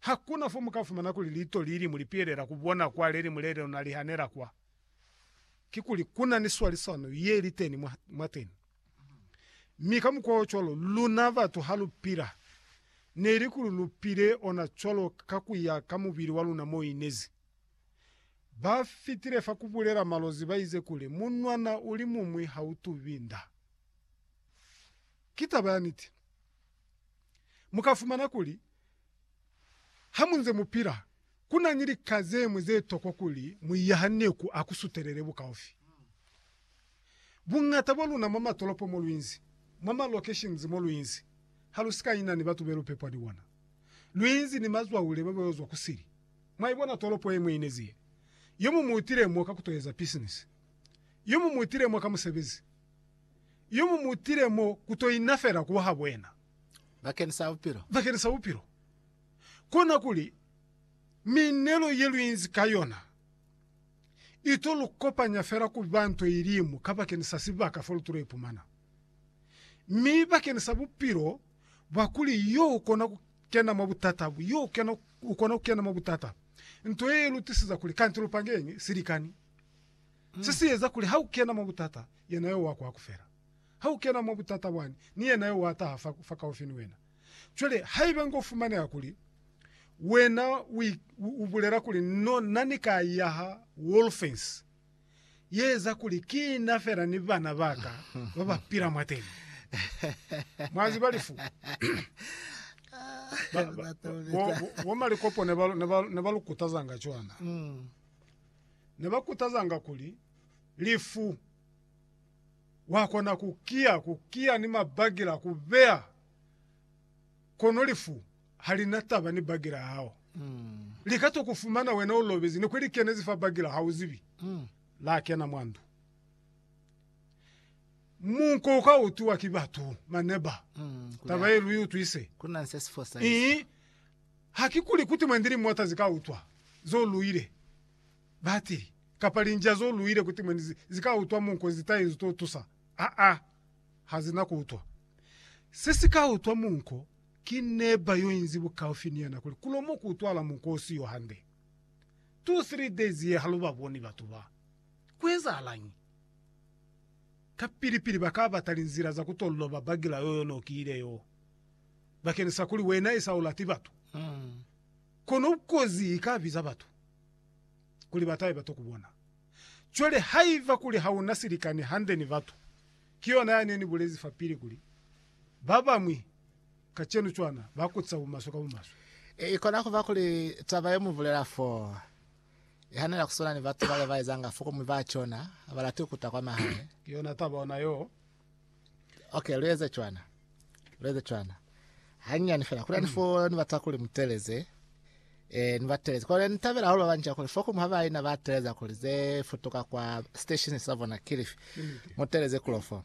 Hakuna fo mukafumana kuli liito lilimu lipiyelela kubona kwa lelimu lelilona lihanela kwa. Kikuli kuna ni swalisano yeliteni mwa, mwateni. Mi ka mukwa ocwalo, luna batu halupila, neli kuli lupile ona cwalo ka kuya ka mubili waluna moinezi. Ba fitile fa kubulela malozi baize kuli, Munwana ulimumwi hautubi nda. Ki taba ya niti. Mu ka fumana kuli, ha mu nze mu pila, ku na ni lika ze ñwi ze tokwa kuli mu iyahane ku a ku sutelele bukaufi. Buñata bwa luna mwa matolopo mo lu inzi, mwa ma locations mo lu inzi, ha lu si ka ina ni batu be lu pepwa ni bona. Lu inzi ni mazwahule ba bayo zwa ku sili. Mwa ibona tolopo ye mwe inezi ye. Yo muñwi u tile mo ka ku to eza pisinisi. Yo muñwi u tile mo ka musebezi. yo mu mutile mo ku to ina fela ku ha Bwena. Bakeni sa bupilo. Bakeni sa bupilo. Kona kuli miinelo ye lu inzi ka yona i to lu kopanya fela ku ba nto ilimu ka bakeni sa sibaka fo lu tulo ipumana. Mi bakeni sa bupilo bwa kuli yo u kona ku kena mwa butata, yo u kena, u kona ku kena mwa butata, nto ye i lu tisiza kuli kanti lu pange silikani. Se si eza kuli ha u kena mwa butata, yena yo wa kwaku fela. Ha u kena mwa butata bwani, ni yena yo wa taha fakaufi ni wena. Cwale, haiba nga u fumaneha kuli wena u bulela kuli, No, na ni ka ya ha Wolfens, ye eza kuli ki na fela ni bana ba ka ba ba pila mwateni. Mwa ziba lifu? Bo Malikopone ne ba lu kutazanga cwana. ne ba kutazanga kuli, Lifu! Wa kona ku kiya, ku kiya ni mabakila, ku beya, kono lifu ha li na taba ni bakila ya hao. Li ka to ku fumana wena u lobezi, ni kuli li kenezi fa bakila ha u zibi. La kena mwa ndu. Munko u ka utwiwa ki batu, maneba. Taba ye lu i utwise. Ku na ni se si fosahiza. Ii, Ha ki kuli kuti mwendi li mota zi ka utwa zo luile, batili, kapa linjia zo luile kuti mwendi zi, zi ka utwa munko nzi ta inzu to tusa. Aa, ha zi na ku utwa. Se si ka utwa munko ki neba yo inzi bukaufi ni yena kuli ku lo mo ku utwahala munko o siyo hande. Two, three days ye ha lu ba boni batu ba. Ku ezahalañi? Kapili-pili ba ka bata linzila za ku to loba bagila yoyo no ki ile yo. bakeni sa kuli wena esa ulati batu, kono kozi ika biza batu kuli batahe bato kubona. Cwale haiba kuli hauna silikani hande ni batu, ki yona yane ni bulezi fapili kuli, babañwi kacenu cwana ba kutisa bumaswe ka bumaswe. Ikona kuba kuli taba ye mubulela fo ihanela kuswana ni batu bale baezanga fo komuñwi ba cona habalati kuta kwa mahae. Ki yona taba ona yo Okay, lueze cwana. Lueze cwana. Hanyani fela. Kula nifo ni batsa kuli muteleze. Eh, ni bateleze. Kole nitabela holo banja kuli foku muhaba ina bateleza kuli ze futuka kwa station sa bona kilifi. Muteleze kulofo.